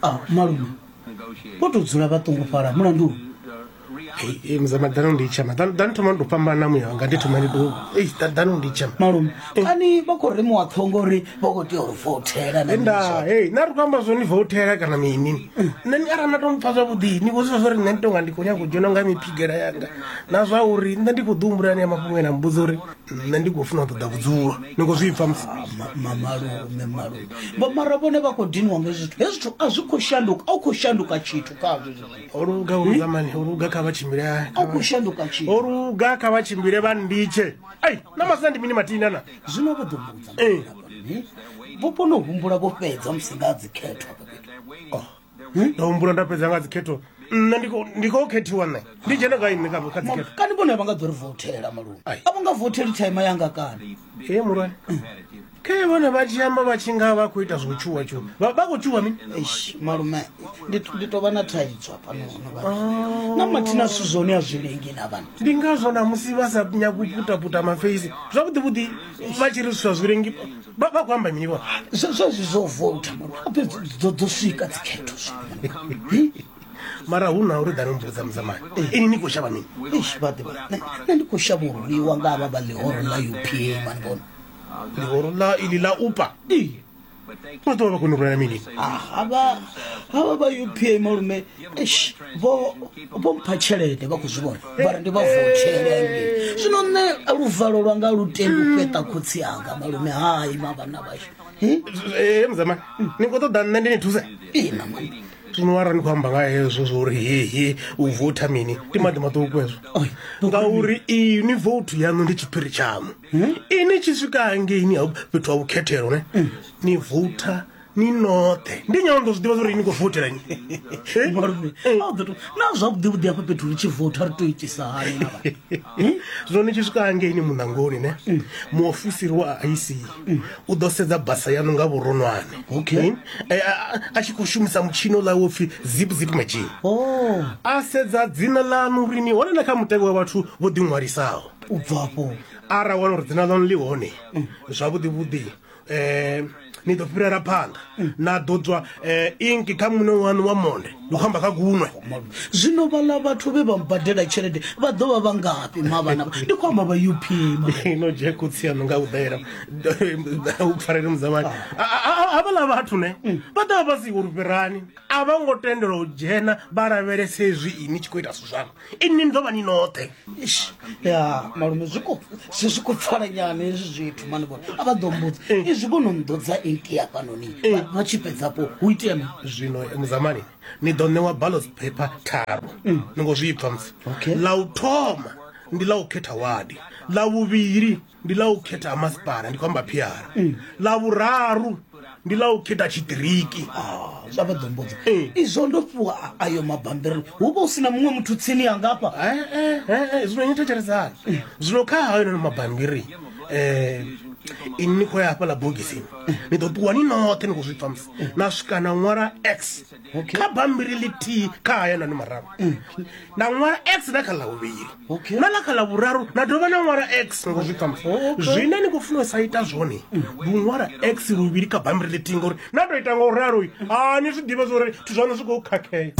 ah malume vho tou dzula vha ṱungufhala mulandu Hey, mzama dano ndichama dano dano thoma ndo pambana muya wanga ndi thoma ndi do ei da- dano ndichama malume kani vha khou remiwa ṱhongo uri vha khou tea uri fothela na enda mizwa. hey na ri khou amba zwoni votela kana mini nṋe ni arali na to mpfa zwavhuḓi ni khou zwifa zwa uri nṋe ndi tonga ndi khou nyanga u dzhena nga miphigela yanga na zwa uri nṋe ndi khou ḓi humbulani ya mafhungo ena mbudza uri nṋe ndi khou funa u ṱoḓa vhudzulo ni khou zwi pfa malume malume vho mara vhone vha khou diniwa nga zwithu hezwi zwithu a zwi khou shanduka a u khou shanduka tshithu khazwo oluga olugamani hmm? oluga kha vha tshimbile a u khou shanduka tshithu oluga kha vha tshimbile vha nditshe ai na masina ndi mini matina na zwino vho ḓo mbudza eh. vho kona u humbula vho fhedza musi nga dzikhethwa oh. hmm? nda humbula nda fhedza nga dzikhetho nṋe ndi khou khethiwa nṋe ndi dzhene gai nṋe kha dzikhetho kani vhone vha nga ḓo ri votela malungu a vho nga voteli thaima yanga kani e mulwane khe vhone vha tshi amba vha tshi nga vha khou ita zwo tshuwa tshuwa vha khou tshuwa mini malume ndi tou vha na thaidzo hafhanono na mathina zwithu zwone a zwi lengi na vhana ndi ngazwo na musi vha sa nyagi u putaputa mafeisi zwavhuḓivhuḓi vha tshi ri zwithu zwa zwi lengi vha vha khou amba mini vho zwezwi zwo vouta ape dzo swika dzikhetho mara hu na uri dani mbudza muzamani ini ni khou shavha mini vhaḓivha nṋe ndi khou shavha u rwiwa nga vha vha ḽihoro ḽa upa mani vhona ḽihoro ḽa ili ḽa upa vha ḓovha vha koni u rwela mini havha vha upa malume Eish, vho vho mpha tshelede vha khou zwi vhona vhari ndi vha vothelenge zwino nṋe luvalo lwanga lu tendi u fheṱa khotsi anga malume hai mavhana vhashu Eh, ee mudzamani ni khou ṱoḓa nṋe ndi ni thuse ina mani zwino wara ni khou amba nga hezwo zwo uri hehe u votha mini ndi maḓi maṱuku hezwo Oi, ngauri ini vouthu yaṋu ndi tshiphiri tshaṋu ini tshi swika hangeini ha fhethu ha vhukhethelo ne ni voutha ni noṱhe ndi nyalo ndo zwi ḓivha zwauri ni khou votela ni na zwavhuḓi vhuḓi afha fhethu ri tshi votha ri to itisa hani na hmm? zwino ni tshi swika hangeini muṋangoni ne hmm. muofisiri wa ic hmm. u ḓo sedza basa yanu nga vhuronwane okay eh, a tshi khou shumisa mutshino ḽa wo pfhi zip zip machine oh. a sedza dzina ḽanu uri ni hone na kha mutevhe wa vhathu vho ḓiṅwalisaho u bvafho ara wana uri dzina ḽanu ḽi hone zwavhuḓi vhuḓi eh ni ḓo fhirela phanḓa na ḓo tswa eh, inki kha muṋe wanu wa monde ndi khou amba kha kunwe zwino vhala vhathu vhe vha mbadela tshelede vha ḓo vha vha ngafhi mavhana ndi khou amba vha up no dzhe khotsi yanu nga u ḓela u pfarele mudzamani havhala vhathu ne mm. vha ḓa vha si uri fhirani a vha ngo tendelwa u dzhena vha lavhelese hezwi ini tshi khou ita zwithu zwanga inni ni ḓo vha ni noṱhe ya malume zwi khou si zwi khou pfala nyana hezwi zwithu mani vhone a vha ḓo mbudza eh. izwi kho no mḓodza eight ya fhanoni eh. vha tshi fhedzapo hu itea mi zwino eh, muzamani ni ḓo ṋewa ballots paper tharu mm. ni ngo zwi pfha musi ḽa u thoma ndi ḽa u khetha wadi ḽa vhuvhili ndi ḽa u khetha ha masipala ndi khou amba phiara mm. ḽa vhuraru ndi ḽa u khetha tshiṱiriki ah, zwa vha ḓombodza eh. izwo ndo fhiwa ayo mabambiri hu vha u si na muṅwe muthu tsini ya ngafha eh, eh, zwino ni thetshelesani zwino kha hayo nono mabambiri um ini ni khou ya hafhaḽa bogisini ni ḓo ṱuwa ni noṱhe ni khou zwi pfa musi na swika na ṅwala x kha bambiri ḽithihi kha hayanani mararu mm. na ṅwala x na kha ḽa vhuvhili na ḽa kha ḽa vhuraru na dovha na ṅwala x ngo zwi ṱamusa zwine ni khou funa u sa ita zwone mm. ndi u ṅwala x luvhili kha bambiri ḽithihi ngauri na tou ita nga u ralo a ni zwi ḓivha zwa uri zwithu zwaṋu zwi khou khakhea